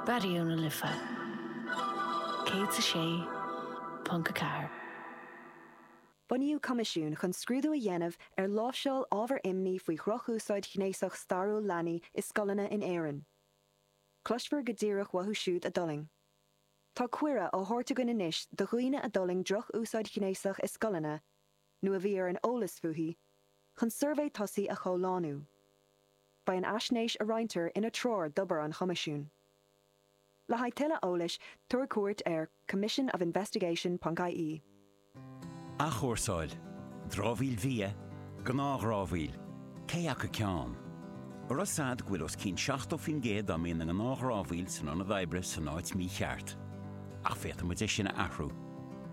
Raidió na Life 106.4. Bunaíodh coimisiún chun scrúdú a dhéanamh ar láimhseáil ábhar imní faoi dhrochúsáid ghnéasach stairiúil leanaí i scoileanna in Éirinn. Cloisfear go díreach uathu siúd a d'fhulaing. Tá cuireadh á thabhairt againn anois do dhaoine a d'fhulaing droch-úsáid ghnéasach i scoileanna, nó a bhí ar an eolas fúithi, chun suirbhé tosaigh a chomhlánú. Beidh an fhaisnéis a roinntear ina treoir d'obair an Choimisiúin. Le haghaidh tuilleadh eolais, tabhair cuairt ar commissionofinvestigation.ie. Athchúrsáil, dramhaíl bhia, gnáthdhramhaíl, cé acu ceann? Arbh eol duit go bhfuil os cionn 70% dá mbíonn i ngnáthdhramhaíl san ionad oibre san áit mícheart. Ach féadfaidh muid é sin a athrú.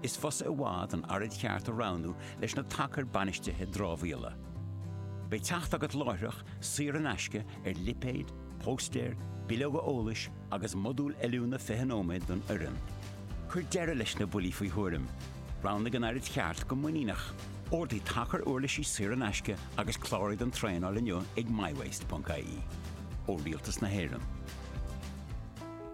Is fusa i bhfad an araid cheart a roghnú leis na tacair bainistithe dramhaíola, beidh teacht agat láithreach, saor in aisce, ar lipéid, póstaeir, bileoga eolais agus modúl oiliúna 20 nóiméad don fhoireann. Cuir deireadh leis na buillí faoi thuairim, roghnaigh an araid cheart go muiníneach, ordaigh tacar uirlisí saor in aisce agus cláraigh don traenáil inniu ag mywaste.ie. Ó Rialtas na hÉireann.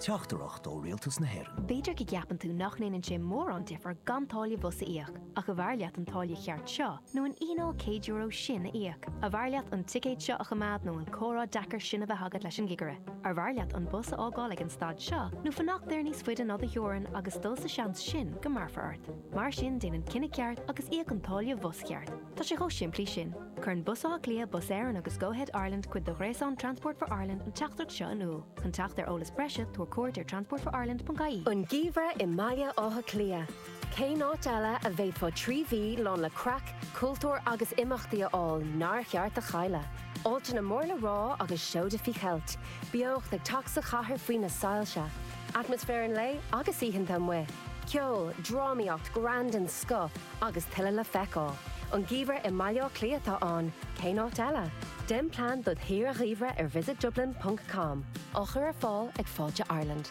Teachtaireacht ó Rialtas na hÉireann. B'fhéidir go gceapann tú nach ndéanann sé mórán difear gan táille bhus a íoc, ach arbh fhearr leat an táille cheart seo nó an fhíneáil €100 sin a íoc? Arbh fhearr leat an ticéad seo a choimeád nó an comhrá deacair sin a bheith agat leis an gcigire? Arbh fhearr leat an bus a fhágáil ag an stad seo nó fanacht air níos faide ná do theorainn agus dul sa seans go mbearfar ort? Mar sin déan an cinneadh ceart agus íoc an táille bhus cheart. Tá sé chomh simplí sin. Cuireann Bus Átha Cliath, Bus Éireann agus Go-Ahead Ireland, cuid de ghréasán Transport for Ireland, an teachtaireacht seo in iúl. Chun teacht ar eolas breise, tabhair cuairt ar transportforireland.ie. An geimhreadh i mBaile Átha Cliath, cén áit eile a bhféadfá trí mhí lán le craic, cultúr agus imeachtaí a fháil nár cheart a chailleadh? Áiteanna mór le rá agus seoda faoi cheilt, beocht ag teacht sa chathair faoi na soilse, atmaisféar an lae agus oícheanta amuigh, ceol, drámaíocht, greann den scoth, Agus tuilleadh le feiceáil. An geimhreadh i mBaile Átha Cliath atá ann, cén áit eile? Déan plean dod' shaoire gheimhridh ar visitdublin ponc com, á chur ar fáil ag Fáilte Ireland.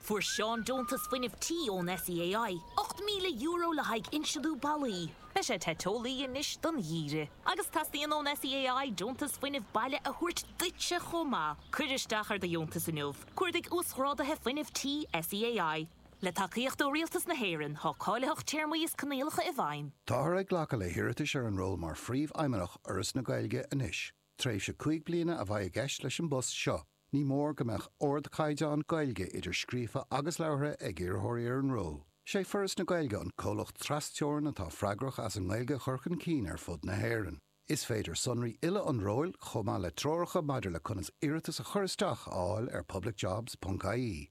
Fuair Seán deontas fuinnimh tí ón SEAI, €8,000 le haghaidh inslithiú ballaí. Beidh sé te teolaí anois don gheimhreadh. Agus teastaíonn ón SEAI deontas fuinnimh baile a thabhairt duitse chomh maith. Cuir isteach ar do dheontas inniu. Cuardaigh Uasghráduithe Fuinnimh Tí SEAI. Le tacaíocht ó Rialtas na hÉireann, tá cáilitheacht téarmaí is coinníollacha i bhfeidhm. Táthar ag glacadh le hiarratais ar an ról mar Phríomhfheidhmeannach Fhoras na Gaeilge anois. Tréimhse cúig bliana a bheidh i gceist leis an bpost seo. Ní mór go mbeadh ardchaighdeán Gaeilge, idir scríofa agus labhartha, ag iarrthóirí ar an ról. Is é Foras na Gaeilge an comhlacht tras-Teorann atá freagrach as an nGaeilge a chur chun cinn ar fud na hÉireann. Is féidir sonraí uile an róil, chomh maith le treoracha maidir le conas iarratas a chur isteach, a fháil ar publicjobs.ie.